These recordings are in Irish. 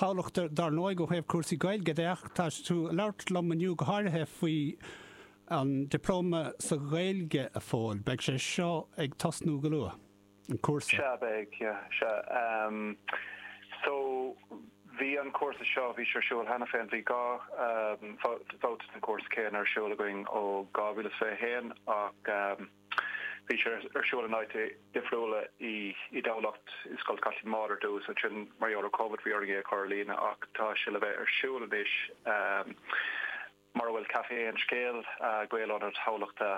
Thamhlacht dar ndóigh ó thaobh cúrsaí Gaeilge de ach tá tú ag labhairt liom inniu go háirithe faoi an Dioplóma sa Ghaeilge, a Phóil. Beidh sé seo ag tosnú go luath, an cúrsa? Sea, beidh, sea. So, bhí an cúrsa seo, bhí sé ar siúl cheana féin, bhí dhá bhabhta den chúrsa céanna ar siúl againn ó 2021 ach, Bhí sé ar siúl in áiteanna difriúla i dTamhlacht, i Scoil Chaitlín Maude ar dtús, ansin mar gheall ar Covid bhí orainn é a chur ar líne ach tá sé le bheith ar siúl anois mar a bhfuil Café Aon Scéal, Gael-ionad Thamhlachta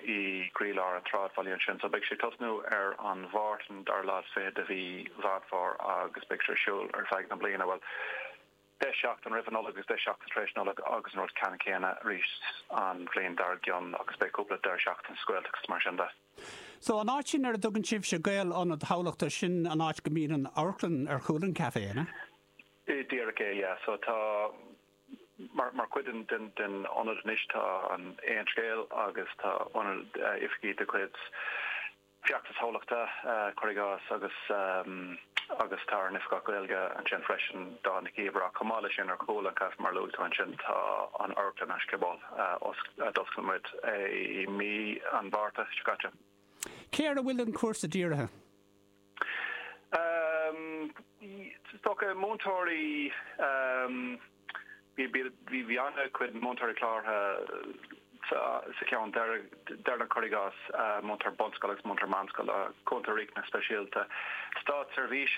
i gcroílár an tsráidbhaile ansin. So beidh sé ag tosnú ar an Máirt, an dara lá is fiche de mhí Mheán Fómhair agus beidh sé ar siúl ar feadh na bliana. Bhuel. 10 seachtain roimh an Nollaig agus 10 seachtain tar éis Nollag agus an rud ceanna céanna arís an bhliain dár gcionn agus beidh cúpla deireadh seachtain sa Ghaeltacht is mar sin de. So, an áit sin ar a dtugann sibhse Gael-Ionad Thamhlachta, sin an áit go mbíonn an amharclann ar chúl an café, an ea? Díreach é, yeah. So tá, mar, mar chuid den, den, den ionad anois tá an Aon Scéal agus tá ionad, oifigí de chuid, Feachtas Thamhlachta cuir i gcás agus agus tá ár n-oifigeach Gaeilge ansin freisin, Dawn Nic Íomhair, ach chomh maith leis sin, ar chúl an chafé, mar a luaigh tú ansin, tá an amharclann An Scioból a d'oscail muid é i mí an Mhárta seo caite. Cé air a bhfuil an cúrsa dírithe? Is dócha múinteoirí. Bhí an-chuid múinteoirí cláraithe sa gceann deireanach, cuir i gcás, múinteoirí bunscoile agus múinteoirí meánscoile, Cúntóirí Riachtanais Speisialta, státseirbhísigh,